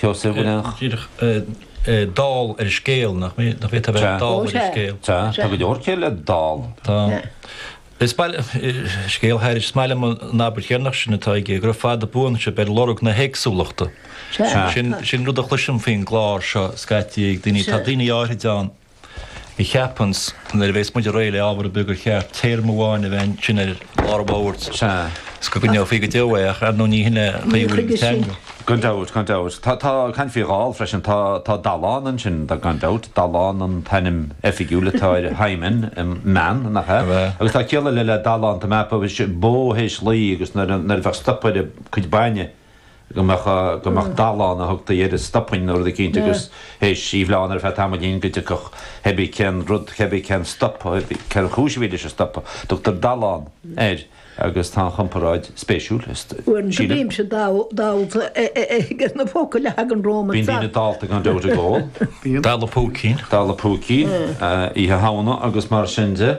Sheosaimh go leanfadh. díreach dall ar an scéal, nach mé? Nach bhféadfadh a bheith dall ar an scéal? Sea, tá go leor céille dall. Tá. Is maith liom scéal thairis, is maith liom an abairt dheireanach sin atá aige, gura fada buan sibh ar lorg na héagsúlachta. Sin rud a chloisim faoin gclár seo scaití ag daoine, tá daoine áirid ann, Ní cheapfainnse, nuair a bhéas muid réidh le ábhar ar bith, gur cheart téarma amháin a bheith ansin ar lár a mhalairt is go gcoinneofaí go deo é, ach ar ndóigh ní shin é taobh amháin den teanga. Gan dabht, gan dabht. Tá, tá, caint faoi dhall freisin, tá, tá Dallán ansin gan dabht, Dallán an t-ainm oifigiúil atá air, Hymen, man, nach ea? Agus tá ciall eile le Dallán, tá mé ag ceapadh, bó théis laoi agus nuair, nuair a bheadh stop ar a cuid bainne, go mbeadh, go mbeadh dallán a thugtaí air an stopán nó rud eicínt agus théis í bhleán ar feadh tamaillín go dtiocfadh hébí cén rud hébí cén stop hébí cén chúis a bhí leis an stopadh. Tugtar dallán air agus tá an chomparáid spéisiúil, sílim. Go mbímse dallta ag na focail a thagann romham ar fad. Bíonn daoine dallta gan dabht ag ól. Dalladh púicín. Dalladh púicín, Oíche Shamhna agus mar sin de.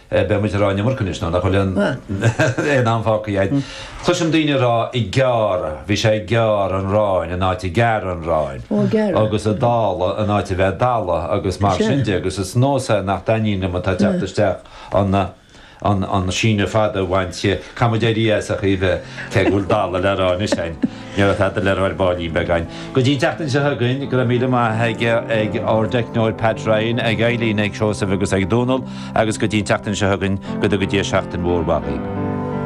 Beidh muid ag rá an iomarca anois, nó nach bhfuil aon am fágtha againn. Cloisim daoine ag rá ag gearr, bhí sé ag gearr an aráin in áit ag gearradh an aráin, agus ag dáladh in áit a bheith ag dalladh, agus mar sin de, agus is nós é nach dtaitníonn liom atá ag teacht isteach an síneadh fada a bhaint, caithfidh muid éirí as ach a Aoibhe, cé go bhfuil dalladh le rá anois againn. Níorbh fada le Roibeard Báinín beagán go dtí an tseachtain seo chugainn. Go raibh míle maith aige, ag ár dteicneoir Pat Ryan, ag Eibhlín, ag Seosamh agus ag Dónal agus go dtí an tseachtain seo chugainn, go dtuga Dia seachtain mhór mhaith dhaoibh.